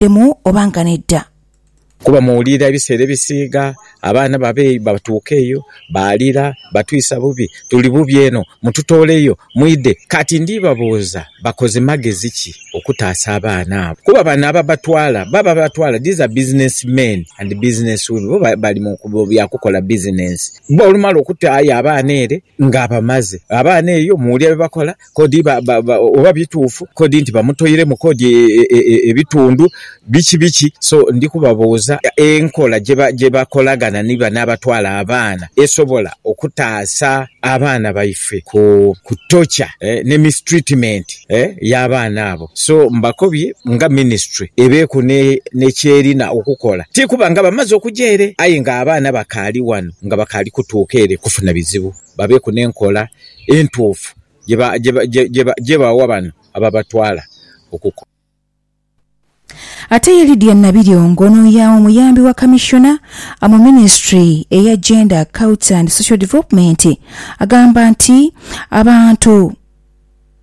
bw'obujeemu oba nga nedha. Kuba muwulira ebiseera ebisiiga abaana babe batuuka eyo, baalira, batwisa bubi, tuli bubi eno, mututooleyo, mwidhe. Kati ndibabuuza, bakoze magezi ki okutaasa abaana abo? Kuba bano ababatwala, baba ababatwala, these are business men and business women, bo bali mu bya kukola bizinensi. Bo olumala okutaayo abaana ere, ng'abamaze. Abaana eyo muwulira bye bakola, kodi oba bituufu, kodi nti bamutoiremu kodi ebitundu biki biki. So ndi kubabuuza enkola gye bakolagana ni bano abatwala abaana esobola okutaasa abaana baife ku torture ne mistreatment y'abaana abo. So mbakobye nga ministry ebeeku ni kyerina okukola. Ti kuba nga bamaze okuja ere aye nga abaana bakaali wano nga bakaali kutuuka ere kufuna bizibu, babeeku n'enkola entuufu gye bawa bano ababatwala okukola. Ate ye Lydia Nabiryoongo ono ya omuyambi wa Kamissiona mu ministry eya Gender, Culture and Social Development agamba nti abantu,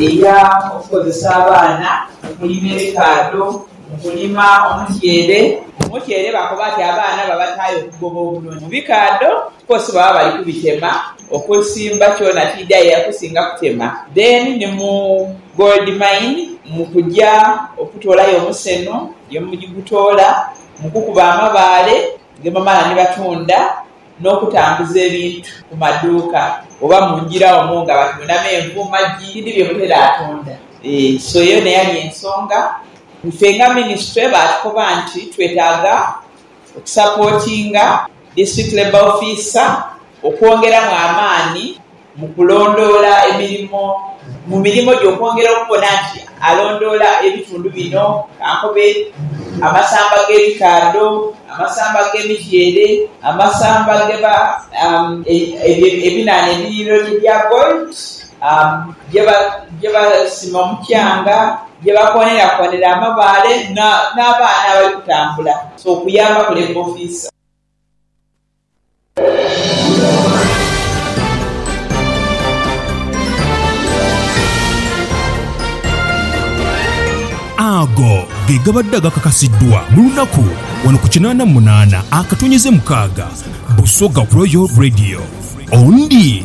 Eya okukozesa abaana mu kulima ebikaadho, mu kulima omutyeere. Omutyeere bakoba nti abaana babataayo okugoba obunoni. Mu bikaadho kwosi baba bali kubitema, okusimba kyona tiidhi aye yakusinga kutema. Then ni mu gold mine mu kuja okutoolayo omuseno ye mugutoola, mu kukuba amabaale ge bamala ni batunda. n'okutambuza ebintu ku maduuka oba mu ngira omwo nga batunda menvu, magi, bindi bye butera tunda. So eyo n'eyali ensonga ife nga minisitule baatukoba nti twetaaga okusapootinga District Labour Officer okwongeramu amaani. Mu kulondoola emirimo, mu mirimo gye okwongera okubona nti alondoola ebitundu bino kankobe, amasamba g'ebikaadho, amasamba g'emityeere, amasamba geba ebyo ebinhaanha ebiyiriro gye bya gold, gye basima omukyanga, gye bakoonerakoonera amabaale n'abaana abali kutambula. So okuyamba kulemba ofiisa. Ago ge gabadde agakakasiddwa mu lunaku wano ku kinaana munaana akatonyeze mukaaga Busoga Royal Radio. Ondi.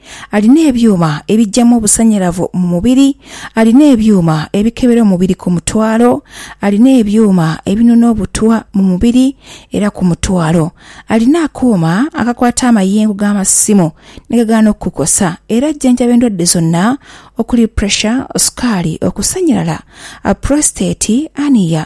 alina ebyuma ebijamu obusanyalavu mu mubiri, alina ebyuma ebikebera omubiri ku mutwalo, alina ebyuma ebinona obutwa mu mubiri era ku mutwalo, alina akuuma akakwata amayengo g'amasimu ni gagaana okukukosa era ajjanjaba endwadde zonna okuli, pressure, sukaali, okusanyalala, prostate, hernia,